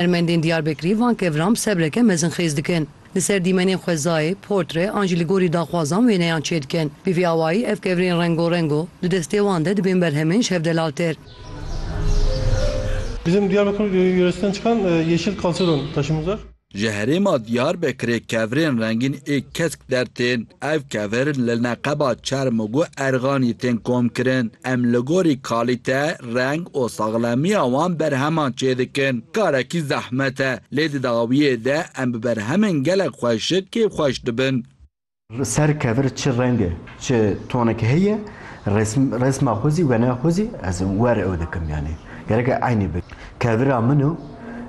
Hunermendên Diyarbekirî van kevran bi sebreke mezin xêz dikin. Li ser dîmenên xwezayê, portre an jî li gorî daxwazan wêneyan çêdikin. Bi vî awayî ev kevrên rengo rengo di destê wan de dibên berhemên ji hev de laltir. Bizim Diyarbakır yöresinden çıkan yeşil kalsedon taşımız var. Ji herêma Diyarbekirê kevrên rengîn ê kesk Der tên, ev kevir li neqeba çerm û guh erxanî tên komkirin. Em li gorî kalîte, reng û saxlemiya wan berheman çêdikin. Karekî zehmet e, lê di dawiyê de em bi berhemên gelek xweşik kêfxweş dibin. Li ser kevir çi reng e, çi tonek heye, resma xwe zî wêneya xwe zî ez wer ew dikim yanî gerek e eynî be. Kevira min û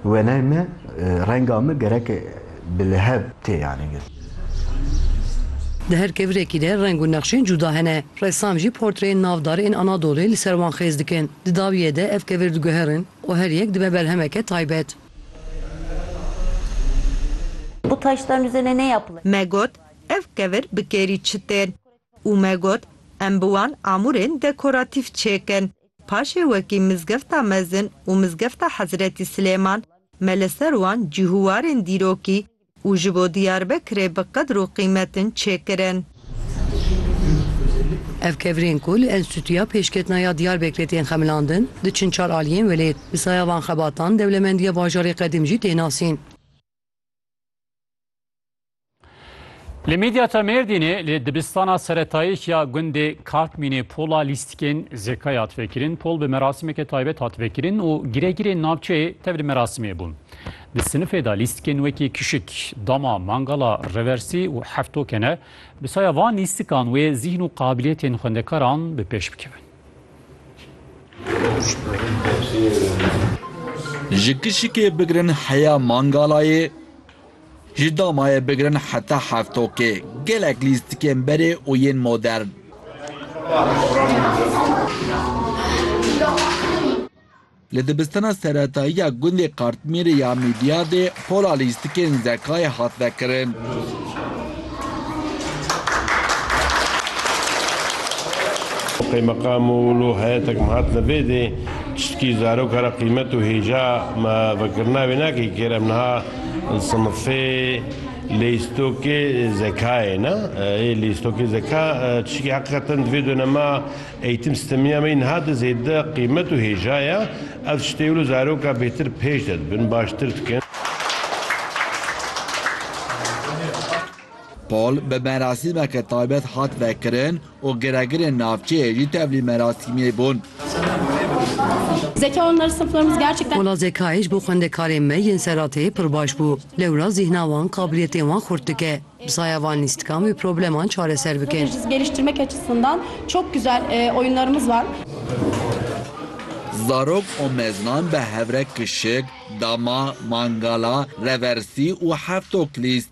wêneyê me, renga me gerek e. bi liheb tê yanîgir. Di her kevirekî de reng û nexşên cûda hene. Ressam jî portreyên navdar ên Anadolê li ser wan xêz dikin. Di dawiyê de ev kevir diguherin û her yek dibe berhemeke taybet. Bu taştan üzerine ne yapılır? Me got, Ev kevir bi kêrî çi tên? Û me got, Em bi wan amûrên dekoratîf çêkin. Paşê wekî Mizgefta Mezin û Mizgefta Hezretî Silêman me li ser wan cîhûwarên dîrokî û ji bo Diyarbekirê bi qedr û qîmetin çêkirin. Ev kevirên ku li Enstîtuya Pêşketina ya Diyarbekirê tên xemilandin, diçin çar aliyên welêt. Bi saya van xebatan dewlemendiya bajarê qedîm jî tê nasîn. Li Midyata Mêrdînê li dibistana seretayî ya gundê Kartmînê pola lîstikên zekayê hat vekirin. Pol bi merasimeke taybet hat vekirin û giregirên navçeyê tev li merasimê bûn. Di sinifê de lîstikên wekî kişik, dama, mangala, reversî û heftoke ne. Bi saya van lîstikan wê zîhn û qabiliyetên xwendekaran bi pêş bikevin. Ji kişikê bigirin heya mangalayê, Ji damayê bigirin heta heftokê, gelek lîstikên berê û yên modern. Li dibistana seretayî ya gundê Kartmîrê ya Mîdyadê pola lîstikên Zekayê hat vekirin. Qeymeqam û lo heyetek me hatine vê dê, tiştkî zaroka re qîmet û hêja me vekirina wê nake kêr, em niha Sinifê lîstokê zekayê ne ê lîstokê zeka tişkî heqîqeten di vê donema eğîtim sîstemîya me niha de zêde qîmet û hêja ye. Ev tiştê wilo zaroka bêtir pêş de dibin, baştir dikin. Pol bi merasîmeke taybet hat vekirin. û giregirên navçeyê jî tevlî merasîmê bûn. Wala zekayê ji bo xwendekarên me yên serrateyê pir baş bû. Lewra zîhna wan qabiliyetên wan xurt dike. Bi saya van lîst dikan vê probleman çareser bikin. Zarok û meznan bi hevrek kişik, dama, mangala, reversî û hevtok lîst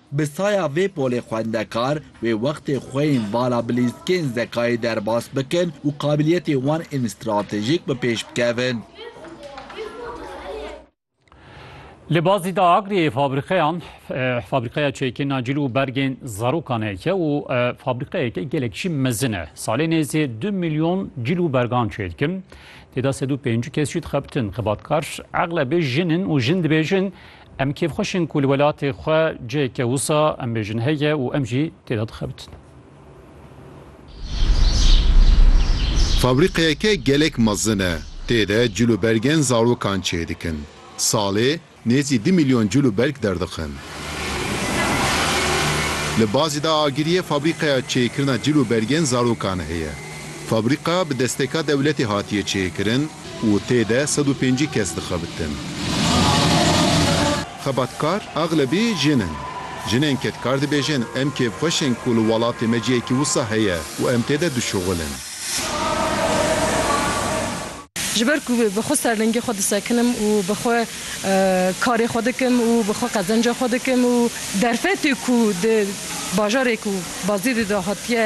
Bi saya vê polê xwendekar wê wextê xwe yên vala bilîzkên zekayê derbas bikin û qabiliyetên wan ên stratejîk bi pêş bikevin. Li Bazî da Agriyê fabrîqeyan fabrîqeya çêkirina cil û bergên zarokan heke û fabrîqeyeke gelek jî mezin e. Salê nêzê du milyon cil û bergan çê dikin. Têda sed û pêncî kes jî dixebitin. Xebatkar eglebê jin in û jin dibêjin Em kêfxweş in ku li welatê xwe ciheke wisa em bêjin heye û em jî tê de dixebitin. Fabrîqeyeke gelek mezin e. Tê de cil û bergên zarokan çê dikin. Salê nêzî du mîlyon cil û berg derdixin. Li Bazîda Agiriyê fabrîqeya çêkirina cil û bergên zarokan heye. Fabrîqa bi desteka dewletê hatiye çêkirin. û tê de sed û pêncî kes dixebitin. Xebatkar axlebî jin in. Jinên kedkar dibêjin em kêfxweş in ku li welatê me cihekî wisa heye û em tê de dişuxil in. Ji ber ku bi xwe serlingê xwe disekinim û bi xwe karê xwe dikim û bi xwe qezenca xwe dikim û derfetê ku di bajarê ku Bazidê de hatiye